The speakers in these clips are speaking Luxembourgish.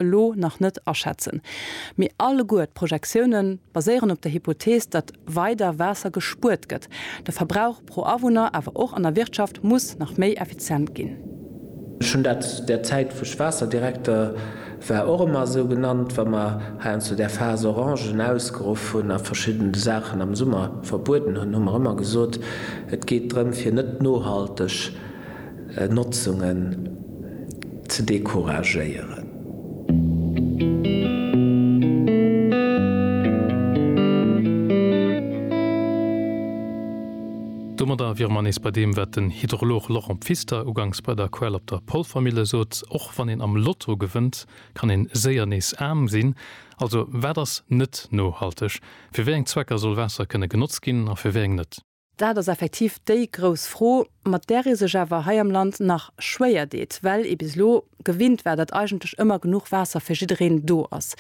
elo nach net aschätzen. Mee alleguer d'Projektioune baséieren op der Hypothees, datt weider Waasser gespuert gëtt, de Verbrauch pro Awunner, awer och an der Wirtschaft, muss nach méi effizient ginn. Ech hunn dat där Zäit, wou ech Waasserdirekter war, och ëmmer esou genannt, wa mer heiansdo där Phas Orangen ausgeruff hunn a verschidden Saachen am Summer verbueden hunn, hu mer ëmmer gesot, et geet drëm, fir net nohalteg, Notzungen ze decouragéieren. Domadder wiere mer nees bei deem, wat den Hydrolog Laurent Pfister uganks bei der Quell op der Polvermille sot, Och wann een am Lotto gewënnt, kann een séier nees aarm sinn. Also wat ass net nohalteg? Fir wéi eng Zwecker soll Waasser kënne genotzt ginn a fir wéi eng net? Dat ass effektiv déi grouss Fro, mat där ee sech awer hei am Land nach schwéier deet, well ee bis elo gewinnt war, datt eigentlech ëmmer genuch Waasser fir jiddereen do ass.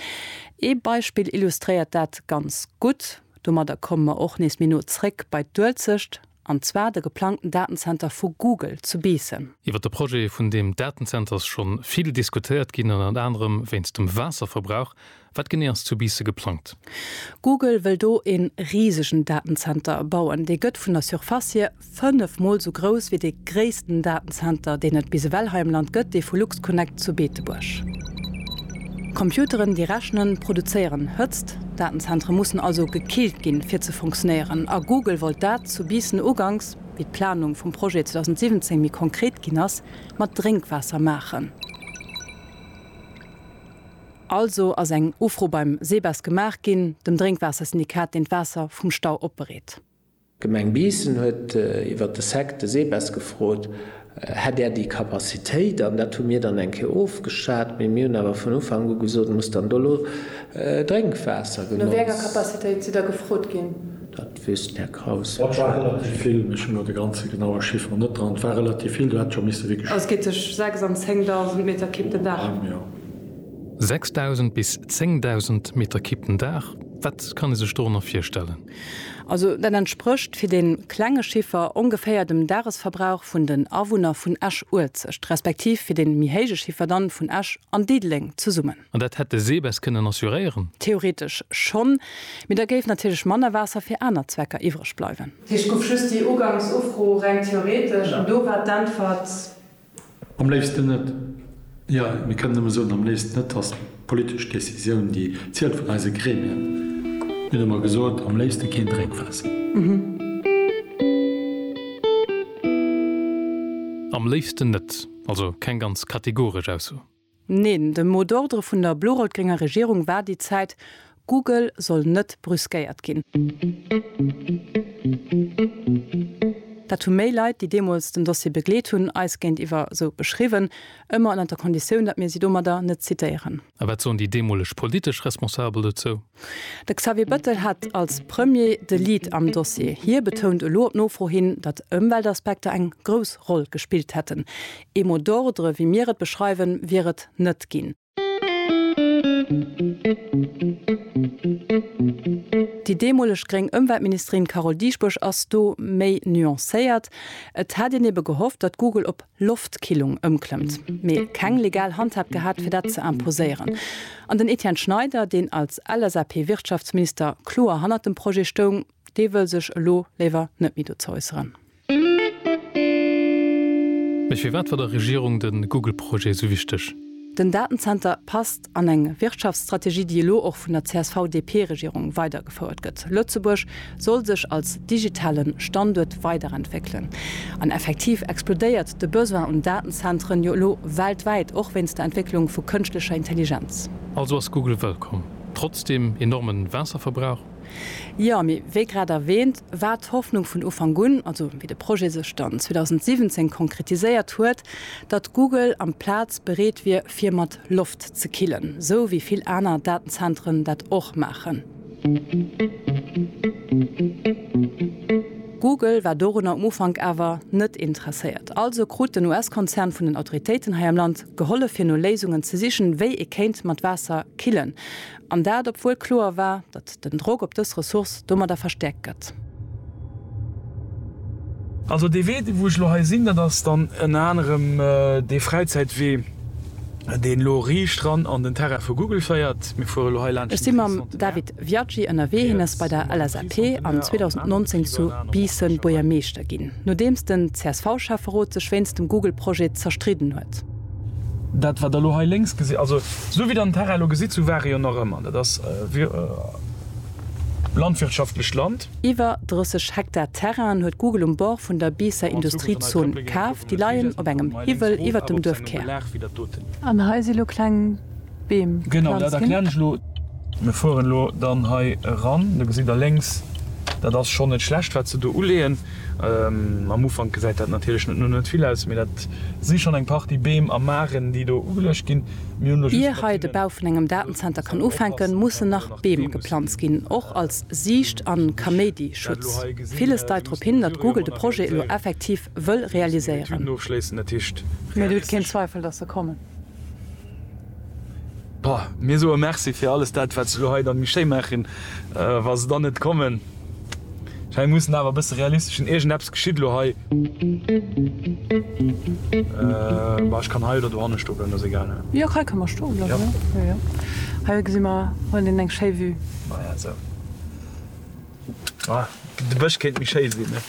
Ee Beispill illustréiert dat ganz gutt, domadder komme mer och nees méi no zréck bei d'Uelzecht, an zwar de geplangten Datenzenter vu Google zu Biissen. Iwwer de Projet vun deem Datenzenter ass scho vill diskutéiert ginn, ënner anerem wéinst dem Waasserverbrauch, Wat genee ass zu Biisse geplangt? Google wëll do e risegen Datenzenter bauen. Dee gëtt vun der Surface hier 5 mol esou grouss wéi dee gréissten Datenzenter, deen et bis ewell hei am Land gëtt, dee vu LuxConnect zu Beetebuerg. Computeren, déi rechnen, produzéieren Hëtzt. Datenzentere mussen also gekillt ginn, fir ze funktionéieren. A Google wollt dat zu Biissen uganks, wéi d'Planung vum Projet 2017 méi konkret ginn ass, mat Drénkwaasser maachen. Also ass eng Ufro beim SEBES gemaach ginn, dem Drénkwaassersyndikat, deen d'Waasser vum Stau opbereet. D'Gemeng Biissen huet iwwer de SEC de SEBES gefrot, hätt Der déi Capacitéit? An dat hu mir dann eng Kéier ofgeschat. Mee mir hunn awer vun Ufank u gesot, muss dann do elo Drénkwaasser genotzt. No wéi enger Capacitéit sidd Der gefrot ginn? Dat wéisst den Här Kraus sécherlech. Et war relativ vill, mee ech hunn elo de ganze genaue Chiffer net dran. Et war relativ vill, do hätt scho misse wierklech. Also et geet tëscht 6 an 10.000 Meter Kipp den Dag. 6000 bis 10.000 Meter Kipp den Dag, wat kann ee sech dorënner virstellen? Also dat entsprécht, fir dee klenge Chiffer, ongeféier dem Dagesverbrauch vun den Awunner vun Esch-Uelzecht, respektiv fir dee méi héije Chiffer dann, vun Esch an Diddeleng zesummen. An dat hätt de SEBES kënnen assuréieren? Theoretesch schonn, mee da géif natierlech manner Waasser fir aner Zwecker iwwreg bleiwen. Heescht, gouf just déi uganks Ufro reng theoretesch an do war d'Äntwert Am léifsten net. Jo, mir kënnen nëmme soen, am léifsten net ass d'politesch Décisioun, déi zielt, vun eise Gremien. Mir hu mer gesot, am léifsten keen Drénkwaasser. Am léifsten net, also keng ganz kategoresch Ausso. Neen, de mot d'ordre vun der blo-rout-grénger Regierung war déi Zäit, Google soll net brüskéiert ginn. Dat hu méi Leit, déi deemools den Dossier begleet hunn, eis géintiwwer esou beschriwwen, ëmmer ënnert der Konditioun, datt mir si domadder net zitéieren. A wat soen déi deemoleg politesch Responsabel dozou? De Xavier Bëttel hat als Premier de Lead am Dossier. Hie betount elo op Nofro hin, datt Ëmweltaspekter eng grouss Roll gespillt hätten. Ee mot d'ordre, wéi mir et beschreiwen, wier et net ginn. Déi deemoleg gréng Ëmweltministerin Carole Dieschbourg ass do méi nuancéiert, Et hätt een ebe gehofft, datt Google op Loftkillung ëmklëmmt, mee keng legal Handhab gehat fir dat ze imposéieren. An den Etienne Schneider, deen als LSAP-Wirtschaftsminister kloer hannert dem Projet stoung, dee wëll sech elo léiwer net méi dozou äusseren. Mee firwat war der Regierung de Google-Projet esou wichteg? Den Datenzenter passt an eng Wirtschaftsstrategie, déi elo och vun der CSV-DP-Regierung weidergefouert gëtt. Lëtzebuerg soll sech als digitale Standuert weiderentwéckelen. An effektiv explodéiert de Besoin un Datenzentren jo elo weltwäit, och wéinst der Entwécklung vu kënschtlecher Intelligenz. Also ass Google wëllkomm, trotz deem enorme Waasserverbrauch? Jo, mee wéi grad erwähnt, war d'Hoffnung vun Ufank un, also wéi de Projet sech dann 2017 konkretiséiert huet, datt Google amplaz bereet wier, fir mat. Loft ze killen, sou wéi vill aner Datenzentren dat och maachen. Google war dorunner um Ufank awer net interesséiert. Also krut den US-Konzern vun den Autoritéiten hei am Land gehollef fir no Léisungen ze sichen, wéi ee kéint mat Waasser killen. An dat obwuel kloer war, datt den Drock op dës Ressource domadder verstäerkt gëtt. Also dee Wee, wou ech elo hei sinn, dat ass dann ënner anerem dee Fräizäitwee, deen elo riicht ran an den Terrain vu Google féiert. Mir fuere elo hei laanscht den Tri-Centenaire. Ech si mam David Viaggi ënnerwee. Hien ass bei der LSAP an 2019 zu Biissen Buergermeeschter ginn, nodeems den CSV-Schäfferot sech wéinst dem Google-Projet zerstridden huet. Dat wat der elo hei lénks gesitt, also esou wéi der den Terrain elo gesitt, esou war e jo nach ëmmer, dat ass landwirtschaftlecht Land. Iwwer 30 Hektar Terrainen huet Google um Bord vun der Biisser Industriezon kaf. Déi leien op engem Hiwwel iwwert dem Duerfkär. An hei si lo kleng. Beem planzen. Mir fueren elo dann hei eran, do gesitt der lénks, dat ass schonn net schlecht wat se do uleeën. Am Ufank gesäit dat natierlech net no net vill aus, mee dat si schonn eng Partie Beem a Maaren déi do ugeluecht ginn. Ier hei de Bau vun engem Datenzenter kann ufänken, mussen nach Beem geplanzt ginn, och als Siicht a Kaméidi-Schutz. Villes deit drop hin, datt Google de Projet elo effektiv wëll realiséieren. Mee et huet keen Zweifel, datt se kommen. Boah, mir soe Merci fir alles dat, wat se elo hei dann méi schéi maachen, wa se dann net kommen. Hei muss en awer e bësse realistesch sinn, iergendeppes geschitt elo hei. Bah, ech kann hei oder dohanne stoe bleiwen, dat ass egal, ne? Jo, hei ka mer stoe bleiwen, jo, jo. Hei gesi mer wuel een eng schéi Vue. Maja, sou. Ah, de Bësch kéint méi schéi sinn, ne?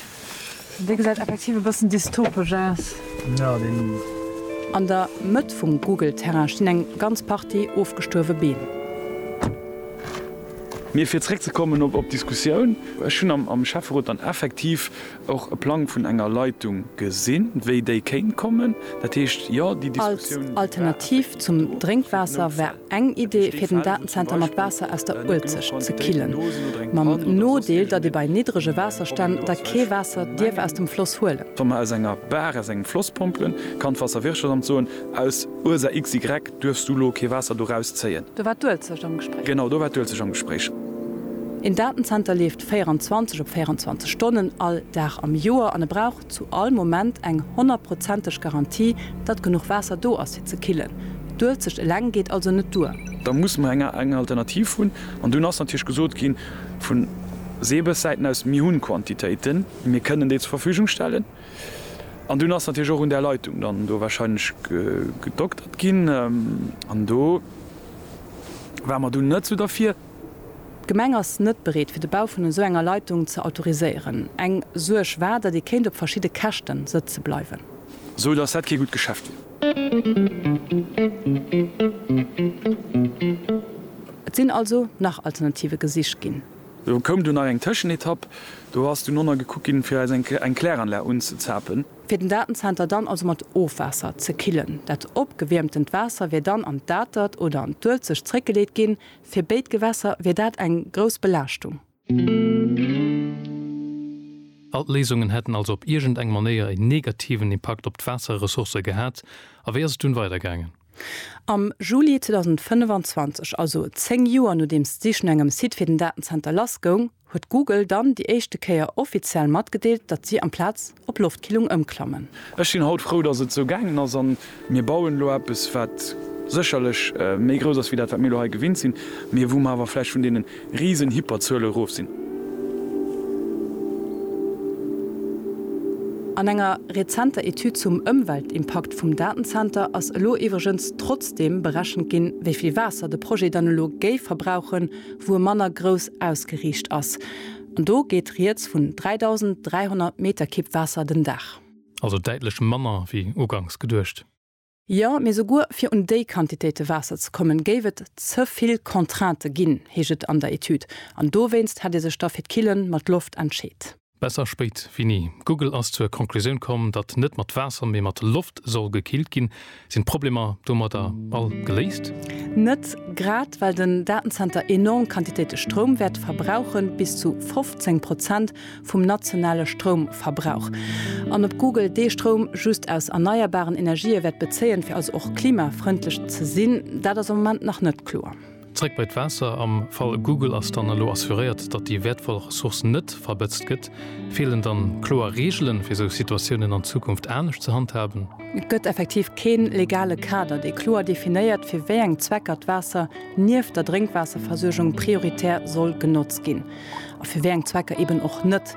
Dee gesäit effektiv e bëssen dystopesch aus. Jo, deen. An der Mëtt vum Google-Terrain stinn eng ganz Partie ofgestuerwe Beem. Mee fir zréckzekommen op d'Diskussioun, Ech hunn am Schäfferot dann effektiv och e Plang vun enger Leitung gesinn, wéi déi kéint kommen. Dat heescht, jo, déi Diskussioun war effektiv am Cours. Als Alternativ zum Drénkwaasser war. Eng Idee fir den Datenzenter mat Waasser aus der Uelzecht ze killen, mam Nodeel, datt ee bei niddrege Waasserstänn da kee Waasser dierf aus dem Floss huelen. Wa mer aus enger Bar, aus engem Floss pompelen, kann d'Waasserwirtschaftsamt soen, aus Ursaach XY duerfs du elo kee Waasser do raus zéien. Do war d'Uelzecht am Gespréich. Genau, do war d'Uelzecht am Gespréich. Een Datenzenter leeft 24 op 24 Stonnen all Dag am Joer an e brauch. Zu all Moment eng honnertprozenteg Garantie, datt genuch Waasser do ass fir ze killen. D'Uelzecht eleng geet also net duer. Da musse mer eng Alternativ hunn. An dunn ass natierlech gesot gi vu Seebessäiten aus, mir hunn Quantitéiten, mir kënnen déi zur Verfügung stellen. An dunn ass natierlech och un där Leitung dann do warscheinlech gedoktert ginn. An do ware mer dunn net esou derfir. D'Gemeng ass net bereet fir de Bau vun esou enger Leitung ze autoriséieren. Eng Suerg war, datt ee kéint op verschidde Käschte sëtze bleiwen. Sou datt dat kee gutt Geschäft wier. Et sinn also nach Alternative gesicht ginn. Do koum dunn nach eng Tëschenetapp. Do ass dunn nonna gekuckt ginn, fir eis eng Kläranlag unzezapen. Fir den Datenzenter dann also mat Ofwaasser ze killen. Dat opgewiermtent Waasser wier dann an d'Atert oder an d'Uelzecht zeréckgeleet ginn, Fir béid Gewässer wier dat eng grouss Belaaschtung. All d'Léisungen hätten also op iergend eng Manéier en negativen Impakt op d'Waasserressourcë gehat. A wéi ass et dunn weidergaangen? Am Juli 2025, also 10 Joer nodeems d'Sich no engem Site fir den Datenzenter lassgoung, huet Google dann déi éischte Kéier offiziell matgedeelt, datt si amplaz op Loftkillung ëmklammen. Ech sinn haut frou, datt et esou gaangen ass an mir bauen elo eppes, wat sécherlech méi grouss ass wéi dat, wat mir elo hei gewinnt sinn, mee wou mer awer vläicht vun deene risen Hyperzuele erof sinn. An enger rezenter Etüd zum Ëmweltimpakt vum Datenzenter ass elo iwwregens trotzdeem berechent ginn, wéi vill Waasser de Projet dann elo géif verbrauchen, wou e manner grouss ausgeriicht ass. An do geet rieds vun 3.300 Meter Kipp Waasser den Dag. Also däitlech manner wéi uganks geduecht. Jo, mee souguer fir un déi Quantitéite Waasser ze kommen, géif et ze vill Contraintë ginn, heescht et an der Etüd. An dowéinst hätt ee sech da fir d'Killen mat Loft entscheet. Besser spéit wéi ni. Google ass zur Conclusioun komm, datt net mat Waasser, mee mat Loft soll gekillt ginn. Sinn d'Problemer domadder all geléist? Net grad, well den Datenzenter enorm Quantitéite Stroum wäert verbrauchen, bis zu 15 Prozent vum nationale Stroumverbrauch. An ob Google dee Stroum just aus erneierbaren Energië wäert bezéien, fir also och klimafrëndlech ze sinn, dat ass am Moment nach net kloer. Zréck bei d'Waasser, Am Fall Google ass dann elo assuréiert, datt déi wäertvoll Ressource net verbëtzt gëtt. Feelen dann kloer Reegelen, fir sou Situatiounen an Zukunft anescht ze handhaben? Et gëtt effektiv keen legale Kader, dee kloer definéiert, fir wéi eng Zwecker d'Waasser nieft der Drénkwaasserversuergung prioritär soll genotzt ginn a fir wéi eng Zwecker eben och net.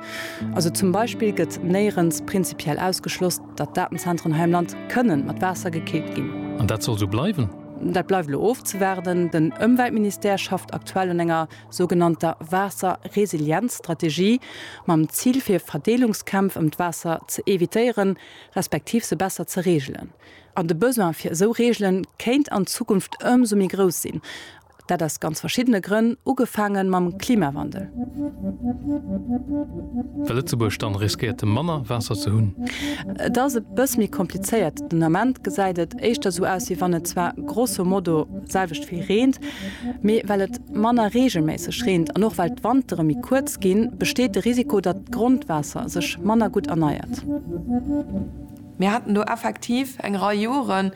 Also zum Beispill gëtt néierens prinzipiell ausgeschloss, datt Datenzentren hei am Land kënnen mat Waasser gekillt ginn. An dat soll sou bleiwen? Dat bleift elo ofzewaarden. Den Ëmweltministère schafft aktuell un enger sougenannter Waasserresilienzstrategie, mam Zil fir Verdeelungskämpf ëm d'Waasser ze evitéieren, respektiv se besser ze reegelen. An de Besoin fir esou Reegele kéint an Zukunft ëmsou méi grouss sinn. Dat aus ganz verschiddene Grënn, ugefaange mam Klimawandel. Well Lëtzebuerg dann riskéiert manner Waasser ze hunn. Et ass e bëss méi komplizéiert. Den Ament gesäit et éischter sou aus, wéi wann et zwar grosso modo selwecht vill reent, mee well et manner reegelméisseg reent an och well d'Wantere méi kuerz ginn, besteet de Risiko, datt d'Grondwaasser sech manner gutt erneiert. Mir haten do effektiv eng Rei Joren,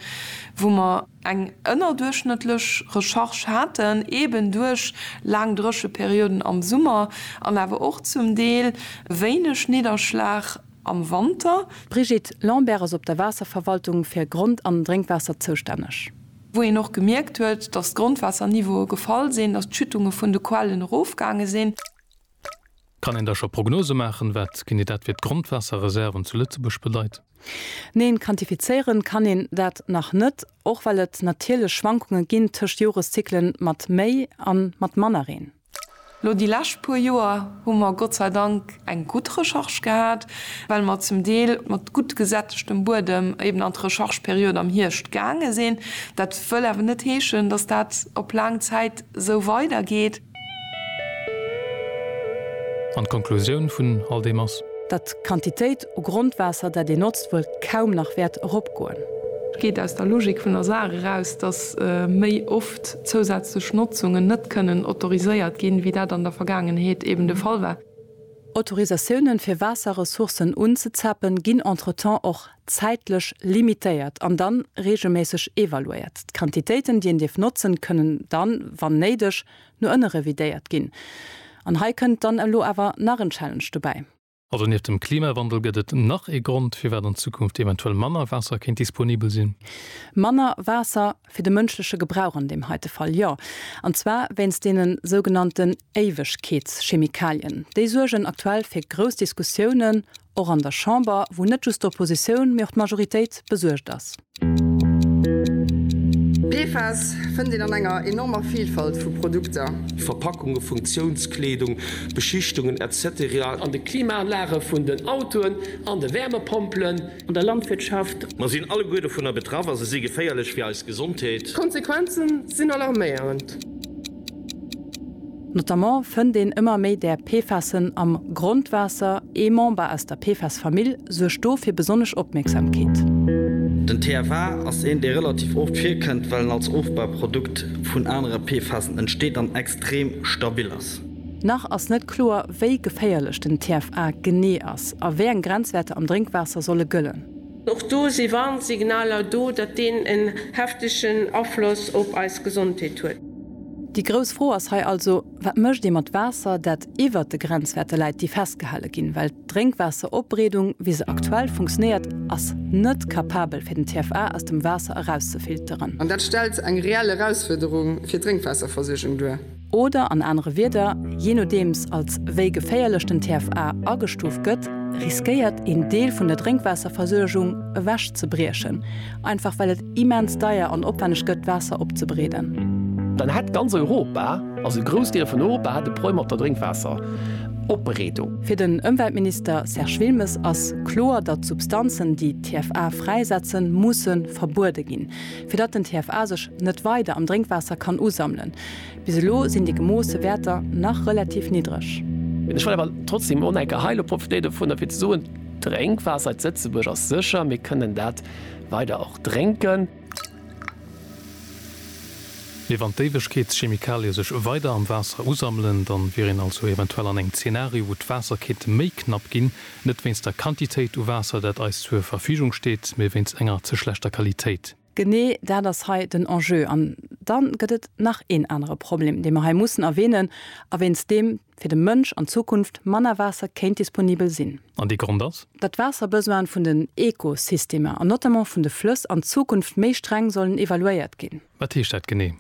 wou mer. eng ënnerduerchschnëttlech Recharge haten, eben duerch laang Drécheperioden am Summer an awer och zum Deel wéineg Nidderschlag am Wanter. D'Brigitte Lambert ass op der Waasserverwaltung fir Grond an Drénkwaasser zoustänneg. wou een och gemierkt huet, datt d'Grondwaasserniveaue gefall sinn, datt d'Schüttunge vun de Quellen erofgaange sinn. Kann een da scho Prognose maachen, wat ginn déi dat fir d'Grondwaasserreserven zu Lëtzebuerg bedeit? Neen, quantifizéieren kann een dat nach net, och well et natierlech Schwankunge ginn tëscht Joreszykle mat méi a mat manner Reen. Lo déi lescht puer Joer hu mer Gott sei Dank eng gutt Recharge gehat, well mer zum Deel mat gutt gesättegtem Buedem eben an d'Rechargeperiod am Hierscht gaange sinn. Dat wëll awer net heeschen, dass dat op laang Zäit esou weidergeet. An d'Konklusioun vun all deem ass? Datt d'Quantitéit u Grondwaasser, dat ee notzt, wuel kaum nach wäert eropgoen. Geet aus der Logik vun der Saach eraus, datt méi oft zousätzlech Notzungen net kënnen autoriséiert ginn, wéi dat an der Vergaangenheet eben de Fall war. Autorisatiounen, fir Waasserressourcen unzezappen, ginn entretemps och zäitlech limitéiert an dann reegelméisseg evaluéiert. D'Quantitéiten, déi een dierf notzen, kënnen dann, wann néideg, no ënne revidéiert ginn. An hei kënnt dann elo awer nach en Challenge dobäi. Also nieft dem Klimawandel gëtt et nach ee Grond, firwat an Zukunft eventuell manner Waasser kéint disponibel sinn. Manner Waasser fir de mënschleche Gebrauch an deem heite Fall, jo. An zwar wéinst deene sougenannten Éiwegkeetschemikalien, déi suergen aktuell fir grouss Diskussiounen, och an der Chamber, wou net just d'Oppositioun, mee och d'Majoritéit besuergt ass. PFAS fënnt een an enger enormer Vilfalt vu Produkter. Verpackunge, Funktiounskleedung, Beschichtungen, etc. An de Klimaanlage vun den Autoen, an de Wärmepompelen. An der Landwirtschaft. Mer sinn alleguer dovunner betraff a se si geféierlech fir eis Gesondheet. D'Konsequenze sinn alarméierend. Notamment fënnt een ëmmer méi där PFASen am Grondwaasser. Ee Member aus der PFAS-Famill suergt do fir besonnesch Opmierksamkeet. Den TFA ass een, dee relativ oft virkënnt, well en als Ofbauprodukt vun anere PFASen entsteet an extrem stabil ass. Nach ass net kloer, wéi geféierlech den TFA genee ass a wéi eng Grenzwäerter am Drénkwaasser solle gëllen. Och do si Warnsignaler do, datt deen en heftegen Afloss op eis Gesondheet huet. Déi grouss Fro ass hei also, Wat mécht ee mat Waasser, dat iwwert de Grenzwäerte läit, déi festgehale ginn? Well d'Drénkwaasseropbereedung, wéi se aktuell funktionéiert, ass net capabel, fir den TFA aus dem Waasser erauszefilteren. An dat stellt eng reell Erausfuerderung fir d'Drénkwaasserversuergung duer. Oder an anere Wierder, jee nodeems als wéi geféierlech den TFA agestuuft gëtt, riskéiert een Deel vun der Drénkwaasserversuergung ewech ze briechen, einfach well et immens deier an opwänneg gëtt d'Waasser opzebereeden. Dann hätt ganz Europa, also e Groussdeel vun Europa hätt e Problem mat der Drénkwaasseropbereedung. Fir den Ëmweltminister Serge Wilmes ass kloer, datt Substanzen, déi TFA fräisetzen, musse verbuede ginn. fir datt den TFA sech net weider am Drénkwaasser kann usammelen. Bis elo sinn déi gemoosse Wäerter nach relativ niddreg. Ech wëll awer trotzdeem och nach eng Kéier hei elo profitéie dovunner, fir ze soen, D'Drénkwaasser zu Lëtzebuerg ass sécher. Mir kënnen dat weider och drénken. Mee wann d'Éiwegkeetschemikalie sech weider am Waasser usammelen, dann wier een also eventuell an engem Zeenario, wou d'Waasser kéint méi knapp ginn, Net wéinst der Quantitéit u Waasser, dat eis zur Verfügung steet, mee wéinst enger ze schlechter Qualitéit. Genee dat ass hei den Enjeu. An da gëtt et nach een anere Problem, dee mer hei mussen erwähnen a wéinst deem fir de Mënsch an Zukunft manner Waasser kéint disponibel sinn. An dee Grond ass. Datt d'Waasserbesoinen vun den Ekosystemer an notamment vun de Flëss an Zukunft méi streng sollen evaluéiert ginn. Wat heescht dat genee?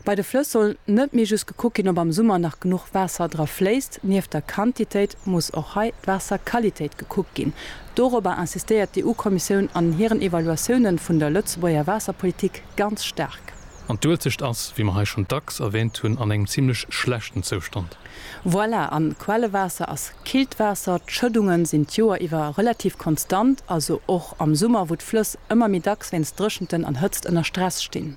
Bei de Flëss soll net méi just gekuckt ginn, ob am Summer nach genuch Waasser dra fléisst. Nieft der Quantitéit muss och hei d'Waasserqualitéit gekuckt ginn. Dorobber insistéiert d'EU-Kommissioun an hiren Evaluatiounen vun der Lëtzebuerger Waasserpolitik ganz staark. An d'Uelzecht ass, wéi mer hei schonn dacks erwäänt hunn, an engem zimlech schlechten Zoustand. Voilà, an d'Quellewaasser ass killt Waasser. D'Schëddungen sinn d'Joer iwwer relativ konstant, also och am Summer, wou d'Flëss ëmmer méi dacks wéinst Dréchenten an Hëtzt ënner Stress stinn.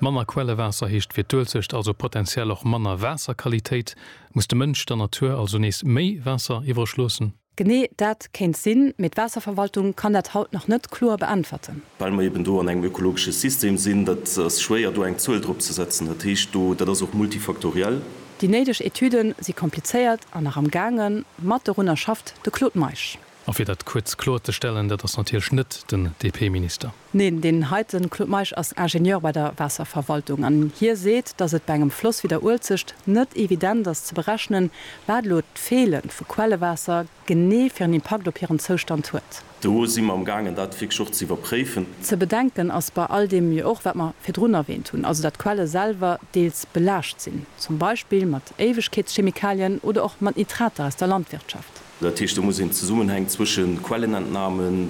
Manner Quellewaasser heescht fir d'Uelzecht also potenziell och manner Waasserqualitéit. Muss de Mënsch der Natur also nees méi Waasser iwwreg loossen? Genee dat kéint sinn, mee d'Waasserverwaltung kann dat haut nach net kloer beäntwerten. Well mer eben do an engem ökologesche System sinn, dat ass schwéier do eng Zuel drop ze setzen. Dat heescht, do, dat ass och multifaktoriell. Déi néideg Etüden si komplizéiert an nach am gaangen, mat dorunner schafft de Claude Meisch. A fir dat kuerz kloer ze stellen, dat ass natierlech net den DP-Minister. Neen, deen heiten Claude Meisch ass Ingenieur bei der Waasserverwaltung an hie seet, dass et bei engem Floss wéi der Uelzecht net evident ass ze berechnen, wat elo d'Feele vu Quellewaasser genee fir en Impakt op hiren Zoustand huet. Do si mer amgaangen, dat wierklech och ze iwwerpréifen. Ze bedenken ass bei all deem jo och, wat mer virdrun erwähnt hunn, also datt d'Quelle selwer deels belaascht sinn, zum Beispill mat Éiwegkeetschemikalien oder och mat Nitrater aus der Landwirtschaft. Dat heescht, do muss een d'Zesummenhäng zwësche Quellenentnamen,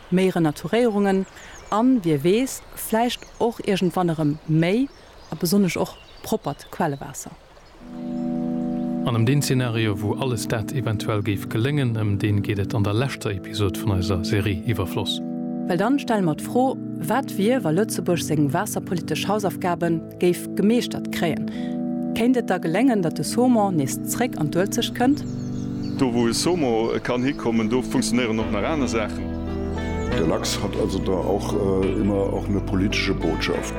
méi Renaturéierungen an, wie weess, vläicht och iergendwann erëm méi a besonnesch och proppert Quellewaasser. An ëm deen Zeenario, wou alles dat eventuell géif geléngen, ëm deen geet et an der leschter Episod vun eiser Serie Iwwerfloss. Well dann stelle mer d'Fro, Wat wier, wa Lëtzebuerg seng waasserpolitesch Hausaufgaben géif gemeeschtert kréien, kéint et da geléngen, datt de Saumon nees zréck an d'Uelzecht kënnt. Do wou e Saumon kann hikommen, do funktionéieren och nach aner Saachen. Der Lachs hat also da auch immer auch ne politische Botschaft.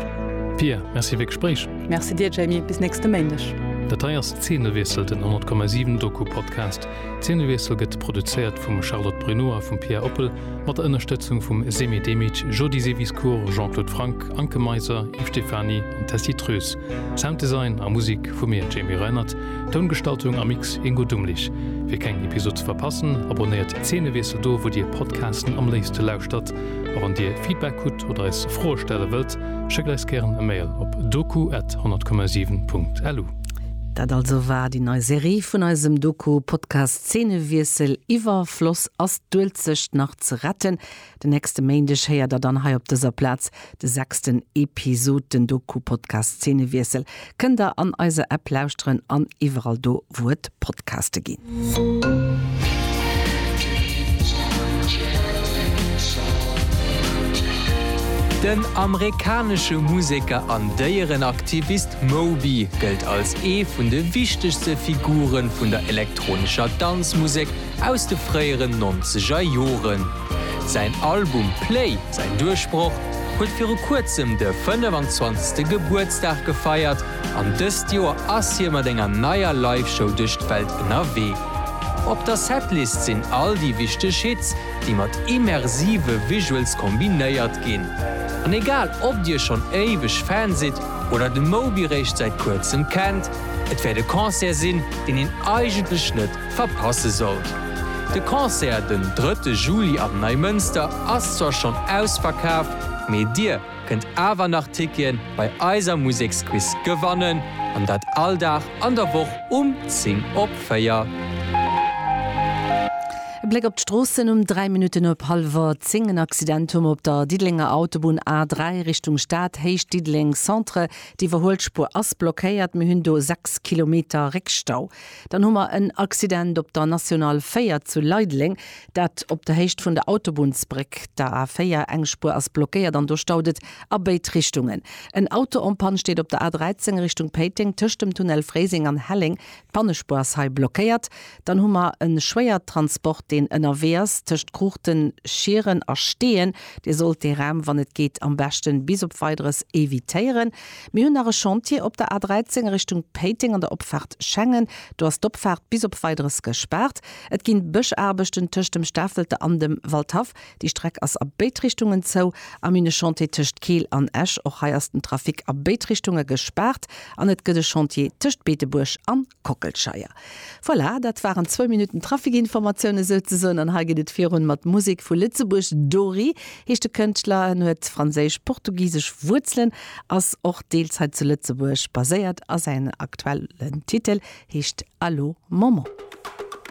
Pia, merci fir Gespréich. Merci dir Jamie, bis nächste Méindeg. Dat hei ass Zeenewiessel, den 100,7 Doku-Podcast. D'Zeenewiessel gëtt produzéiert vum Charlotte Bruneau a vum Pierre Oppel mat der Ënnerstëtzung vum Semih Demic, Jody Seviscourt, Jean-Claude Franck, Anke Meiser, Yves Stephany an Tessy Treus. Sounddesign a Musek vu mir, Jamie Reinert, Toungestaltung a Mix, Ingo Dumlich. Fir keng Episod ze verpassen, abonnéiert Zeenewiessel do, wou Dir Podcasten am léifste lauschtert. A wann Dir Feedback hutt oder eis Froe stelle wëllt, schéckt eis gären e Mail op doku at 100,7.lu. Dat also war déi nei Serie vun eisem Doku-Podcast Szenewiessel, Iwwerfloss, Ass d'Uelzecht nach ze retten? Den nächste Méindeg héiert der dann hei op dëser Plaz de sechsten Episod. Den Doku-Podcast Szenewiessel kënnt der an eiser App lauschteren an iwwerall do, wou et Podcaste ginn. Den amerikanesche Museker an Déierenaktivist Moby gëllt als ee vun de wichtegste Figure vun der elektronescher Danzmusek aus de fréieren nonzeger Joren. Säin Album Play, säin Duerchbroch, huet viru kuerzem de 25. Gebuertsdag gefeiert, An dëst Joer ass hie mat enger neier Live-Show duerch d'Welt ënnerwee. Op der Setlist sinn all déi wichteg Hits, déi mat immersive Visuals kombinéiert ginn. An egal ob dir schonn éiweg Fan sidd oder de Moby réischt säit kuerzem kennt, et wäert e Concert sinn, deen een eigentlech net verpasse sollt. De Concert den drëtte Juli am Neimënster ass zwar schonn ausverkaaft, mee dir, kënnt awer nach Tickien bei eiser Museksquiz gewannen an dat all Dag an der Woch um 10 op 4. E Bléck op d'Stroossen um 3 Minutten op hallwer 10. En Accident hu mer op der Diddelenger Autobunn A3 Richtung Stad, Héicht Diddeleng Centre. D'Iwwerhuelspuer ass blockéiert, mir hunn do 6 Kilometer Réckstau. Dann hu mer en Accident op der National 4 zu Leideleng. Dat op der Héicht vun der Autobunnsbréck, der A4. Eng Spuer ass blockéiert an do staut et a béid Richtungen. En Auto en panne steet op der A13 Richtung Péiteng tëscht dem Tunnel Fréiseng an Helleng. D'Pannespuer ass hei blockéiert. Dann hu mer e Schwéiertransport, deen ënnerwee ass tëscht Cruchten, Schieren a Steeën. Dir sollt dee Raum, wann et geet, am beschte bis op Weideres evitéieren. Mir hunn nach e Chantier op der A13 Richtung Péiteng an der Opfaart Schengen. Do ass d'Opfaart bis op Weideres gespaart. Et ginn Bëschaarbechten tëscht dem Stafelte an dem Waldhaff. Déi Streck ass a béid Richtungen zou. Am hunn e Chantier tëscht Keel an Esch. Och hei ass den Trafic a béid Richtunge gespaart. An et gëtt e Chantier tëscht Beetebuerg an Kockelscheier. Voilà, dat waren zwou Minutten Traficinformatiounen souzesoen. An hei geet et virun mat Musek vu Lëtzebuerg. Dori heescht de Kënschtler. En huet franséisch-portugisesch Wuerzelen, ass och deels hei zu Lëtzebuerg baséiert a säin aktuellen Titel heescht Allo Maman.